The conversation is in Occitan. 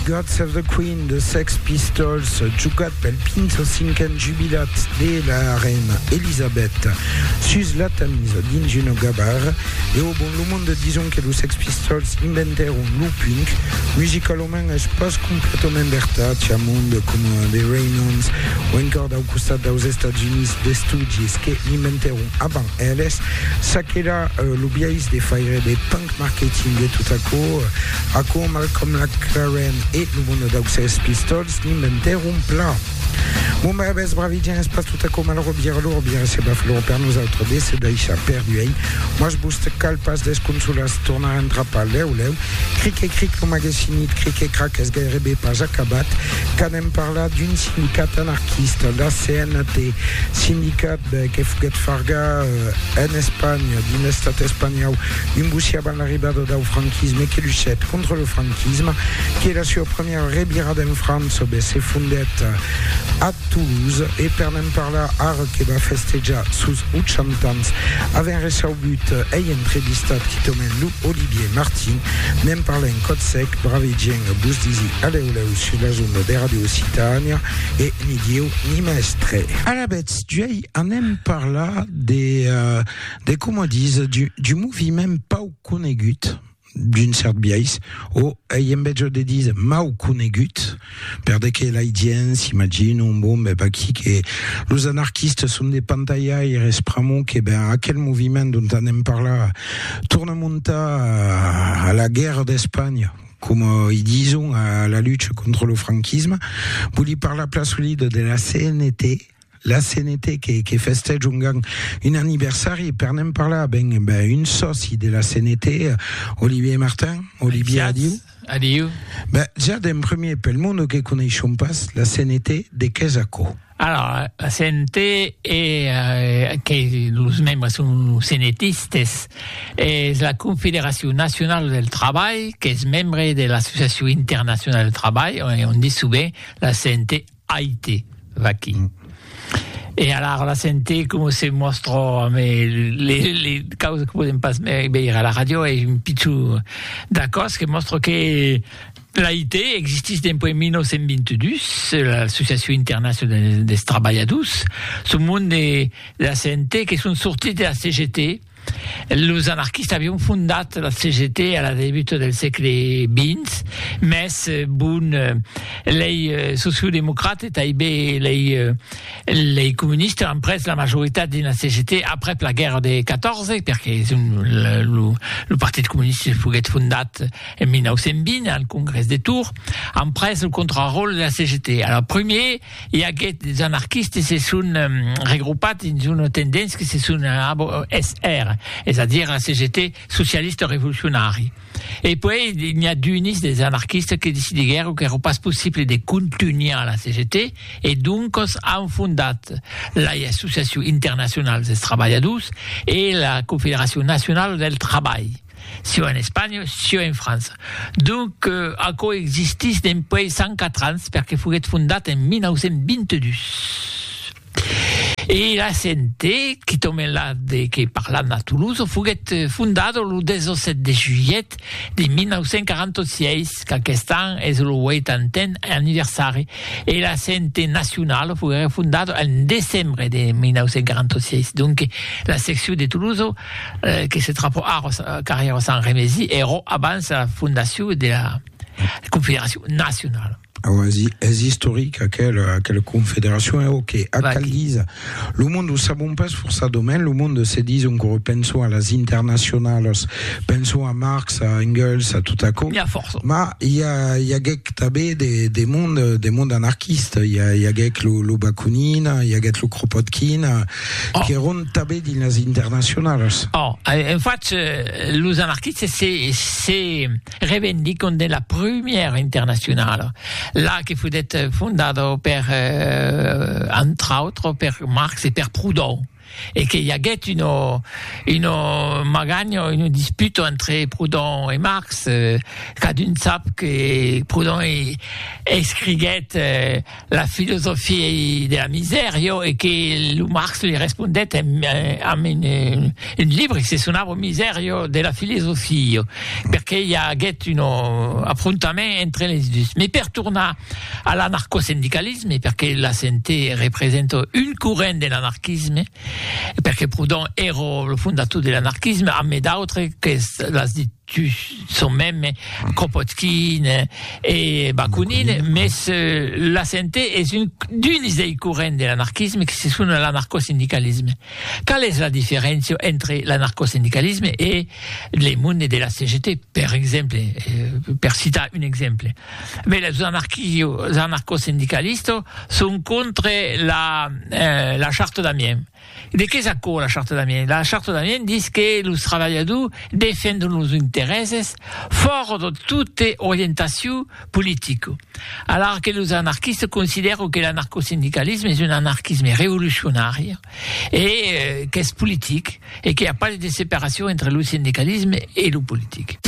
God Save the Queen de Sex Pistols, jugat pel 25n jubilat de la reina Elisabeth sus la Tamise dins una gabar. E au bon lo monde dison que los Sex Pistols inventèron lo punk. Musicalament es pas completament vertat, cha monde coma The Ramones o encòr dau costat daus Estats Units d'estudis que l'inventèron avant Eles, ça qu'èra lo biais de faire de punk marketing e tot aquò. Aquò, Malcolm McLaren e lo mono dau Sex Pistols n'inventèron plan. Bon barabès, bravi, dires pas tot aquò malrò, Bière lor, bière se baf lor per nosautres de se daishar perduèin. Mas vos cal pas desconsolar se tornar entrapar lèu lèu. Cric e cric, lo magasinit Cric e Crac es gairebe pas acabat qu'anem parlar d'un sindicat anarquista, la CNT, Sindicat. Be que foguèt farga en Espanha, dins l'Estat espanhau, un bocí avant l'arribada dau franquisme que luchèt contra lo franquisme, que la sua premiera revirada en França be se fondèt a Toulouse e per ne'n parlar ara que va festejar sos 80 ans avèn recebut ei entrevistat quitament lo Olivier Martin, ne'n parla en còth sec, bravegièn vos disi alèu lèu sus las ondas de Radio Occitània e ni Dieu ni mèstre. Alabè, Juei anem parlar de, uh, de coma dis, du, du moviment pau conegut d'un cert biais, o ei en vez de dir mau conegut, per de que l'ai dient, s'imagino, bon, ben, aquí que los anarquistes son de pantaiaires, pramo que, ben, aquel moviment dont anem parlar torna montar a la guerra d'Espanha, coma i dison a la lucha contra lo franquisme, voli parlar plasolida de la CNT, la CNT que, que festèja un gang un anniversari e per ne'n parlar, ben, ben un sòci de la CNT, Olivier Martin. Olivier, adiu. Adiu. Ben, ja d'en premier, pel monde que coneishon pas la CNT, de qu'es aquò? Alara, la sente e que los membres son senetistes, es la Confederacion Nacionala del Trabalh qu'es membre de l'Associacion Internacionala del Trabalh, on ditz sovent la sente AIT, vaquí. E alara la sente coma se mòstra amb li causas que podèm pas veire a la ràdio, es un pichon d'acòst que mòstra que L'AIT existís dempuèi 1922, l'Associacion Internacionala dels Trabalhadors, son mond de la CNT que son sortits de la CGT. Los anarquistas avián fondat la CGT a la debuta del sègle XX, mès bon, lei sociodemocrats e tanben lei comunistas an pres la majoritat dins la CGT aprèp la guèrra de 14, perque lo Partit Comunista foguèt fondat En 1920, al congrès de Tours, an pres lo contraròtle de la CGT. A la premier, i aguèt des anarquistes se son regropat dins una tendéncia que se son ABSR, es a dire la CGT socialista revolucionari. E puèi n'i a d'unis des anarquistes que decidiguèron qu'èra pas possible de contunhar la CGT e doncas an fondat l'AI Associacion Internacional dels Trabalhadors e la Confederacion Nacionala del Trabalh. Sieu en Espanha, sieu en França. Donc, aquò existís dempuèi 104 ans, perque foguèt fondat en 1922. E la CNT, qui tombe la de que parlam a Toulouse, foguèt fondada lo 17 de julhet de 1946, qu'aquest an es lo 80n anniversari, e la CNT nacionala foguèt fondada en decembre de 1946. Donc, la seccion de Toulouse que se trapò ara au carrèr de Sant Remesi, èrò abans era fondacion dera Confederacion Nacionala. Auasi, es istoric aquela, aquela confederacion, e ok, ac Vaqui. cal díser, lo monde o sabon pas forçadament, lo monde se dison qu'ora penson a las internacionalas, penson a Marx, a Engels, a tot aquò, N'ia fòrça. mas i a, i aguèc tanben de, de monde, de monde anarquista, i a, i aguèc lo, lo Bakunin, i aguèt lo Kropotkin, qu'èron tanben dins las internacionalas. Ò, en fach, los anarquistes se se revendicon de la prumièra internacionala, la que foguèt fondada per, entre autres, per Marx e per Proudhon, e que i aguèt una una maganha, una disputa entre Proudhon e Marx, cadun sap que Proudhon escriguèt la filosofia de la misèr, jo, e que lo Marx li respondèt en, amb un, un libre que se sonava Misèr, jo, de la filosofia, jo, perqué i aguèt un afrontament entre les dus. Mes per tornar a l'anarcosindicalisme, perqué la CNT representa un corrent de l'anarquisme, perqué Proudhon èra lo fondator de l'anarquisme, amé d'autres qu'es, l'as dit, Tu son mème Kropotkin e Bakunin, mès la sente es un d'uns dei corrents de l'anarquisme que se sona l'anarcosindicalisme. Qual es la diferéncia entre l'anarcosindicalisme e le monde de la CGT, per exemple, per citar un exemple? Bè, los anarquio, anarcosindicalistos son contre la, la charta d'Amiens. De qué es aquò la Charta d'Amiens? La Charta d'Amiens dis que los travalhadors defendon los interèses fòrt de tota orientacion politica, alara que los anarquistes considèran que l'anarcosindicalisme es un anarquisme revolucionari e qu'es politic e qu'i a pas de separacion entre lo sindicalisme e lo politic.